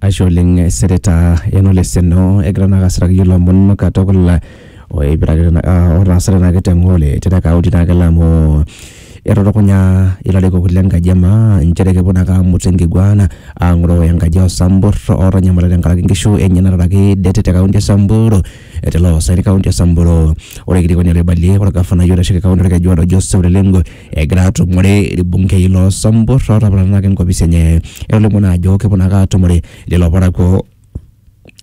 Ashe oleng Senator Eno Leseno egira naa asiraki iyiok ilomon katukul oipirare naa otaasate naa kitengo le te kaunti naa kelo amu etutukunya ilarikok le nkaji e maa inchere kepuo naake aamut enkiguana aang'oroo enkaji oo sambur ootanyamala tenkaraki inkishu enye nataraki det te kaunti e Samburu tele osaen kaunti e Samburu. Ore orkilikuai oibalie ore orgafanai oitasheki kaunti orkejuado Joseph Ole Lenku egira atumore irbungei loo Sambur ootapatanaki enkopisi enye. Etolimuo naa ajo keponu ake atumore lelo parakuo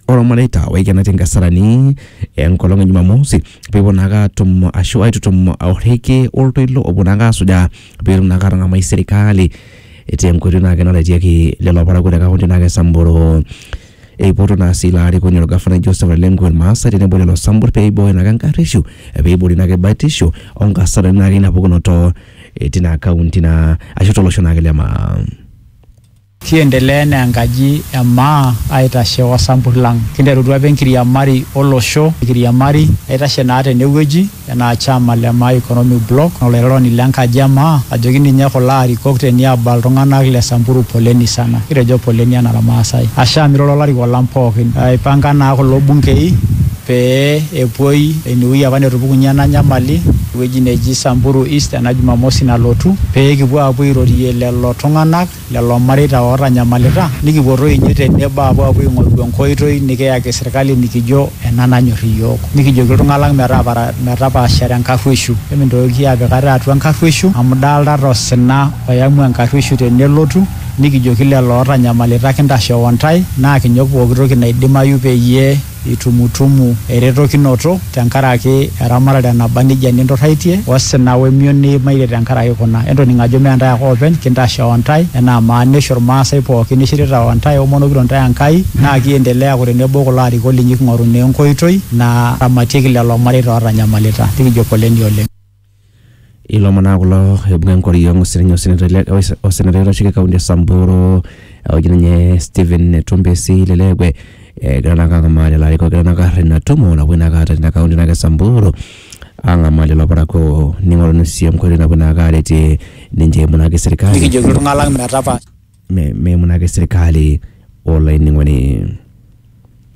ormareita oikenaitie inkasarani enkolong e Jumamosi peepuo naake atum ashu aitutum orrekie oltoilo opuo naake asujaa peetum naake atang'amai serkali tenkoitoi naake naretieki lelo parakuo te kaunti naake e Samburu Eipoto naa sii ilo arikoni olgafanai Joseph Ole Lenku Ilmaasai tenebo lelo sambur pee eibooyo naake enkarrishu pee eiboori naake batisho o nkasarani naake ina pukunoto tina kaunti naa ashu to losho naake le maa. Kiendelea enaa enkaji e maa aitashe o sambur lang. Kinterutua apa enkiriamari o losho, enkiriamari naitashe naa tene wueji. Enaa chama le Maa Economic Bloc olairoroni le nkaji e Maa ajoki ninye kulo arikok te niaba iltunganak le Samburu poleni sana. Kitejo poleni anaa ilmaasai. Ashe amu iroro olarikok lang pooki. Eipanka naa kulo bunkei pee epuoi ine wueji apa netupukunye ena nyamali ewueji neji Samburu East ena jumamosi nalotu pee kipuo aapuo airorie lelo tunganak. lelo mareita ootanyamalita nikipuo toi ninye te nebo aapuo aing'oru enkoitoi nikiyaki sirkali nikijo ena nanyor iyiook. Nikijoki iltung'ana lang metaapara metapaashare enkarruoishu. Emintoki aapik ate atua enkarruoishu amu idolitata osina oyamu enkarruoishu tenelotu nikijoki lelo ootanyamalita kintashoo intae naa kinyok pooki toki naidimayu peyie itumutumu eretokinoto te nkaraki eramatare naba neijia ninturraitie, osina o emion niimaitie te nkaraki kuna. Entoning ajo mme intae ake oopeny kintashe o intae enaa maanisho Ilmaasai pooki nishirita o intae omonokito intae Enkai naa kiendelea aaku tenebo o kulo arikok linyi king'oru naa enkoitoi naramatieki lelo mareita ootanyamalita. Nikijo poleni oleng. Ilomon naa kulo oibung'a enkoriong osinyai osenetai oitasheki kaunti e Samburu oji ninye Stephen Tumbesi Lelewe egira naa ang'amaa lelo arikok lenyenak aar ina tumo napuoi naake aata tina kaunti naake e Samburu ang'amaa lelo parakuo ning'oruni sii enkoitoi napuo naake aretie ninche eimu naake serikali nikijoki iltung'anak metapaash me- meimu naake serikali olainining'oni.